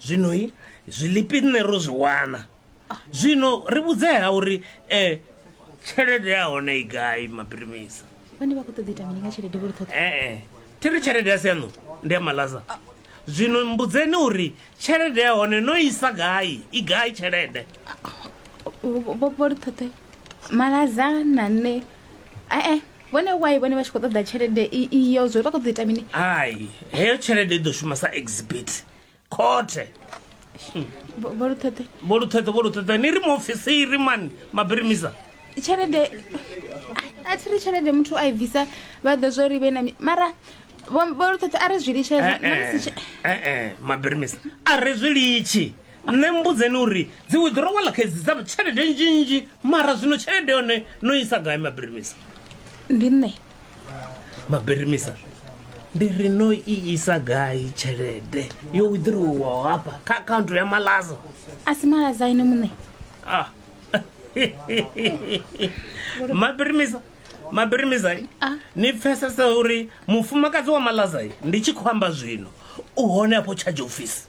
zwino i zwilipi nṋe ro zwi wana zwino ri vhudzea uri um tshelede ya hone i gai mapirimisa vhane vha khou ṱoḓa ita mini nga tshelede vho ri ṱhoḓa ee thi ri tshelede ya sianu ndi ya malaza zwino mbudzeni uri tshelede ya hone no isa gai i gai tshelede vho ri ṱhoḓe malaza na nṋe ee vhone why vhone vha tshi khou ṱoḓa tshelede i- iyo zwo vha khou ḓo ita mini hai heyo tshelede i ḓo shuma sa exhibit khothe Vho- vho luṱheṱhe vho luṱheṱhe vho luṱheṱhe ni ri muofisiri mani mabirimisa tshelede a thi ri tshelede muthu a i bvisa vha ḓo zwo ri vhe na mi- mara vho vho luṱheṱhe a ri zwi litshedza Eh, eh, eh, eh, mabirimisa a ri zwi litshi Nṋe mmbudzeni uri dzi withdrawal khedzi dza tshelede nzhinzhi mara zwino tshelede yone no isa gai mabirimisa? Ndi nṋe. Mabirimisa ndi ri no i isa gai tshelede yo withdrawwaho hafha kha account ya malaza? A si malaza ene muṋe. Ah. Mabirimisa Mabirimisa ah. ni pfesesa uri mufumakadzi wa malaza ndi tshi khou amba zwino u hone afho charge office.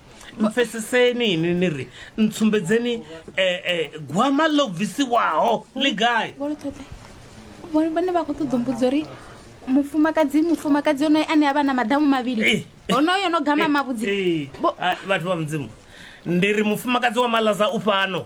mpfeseseni ini ni ri ntsumbedzeni um um gwama ḽo bvisiwaho ḽi gai vhone vha khou ṱoḓo mbudzo uri mufumakadzi mufumakadzi onoyo ane a vha na maḓamu mavhili eh, eh, onoyo no gama eh, mavhudzi ah, vhathu vha mudzimu ndi ri mufumakadzi wa malaza u fhano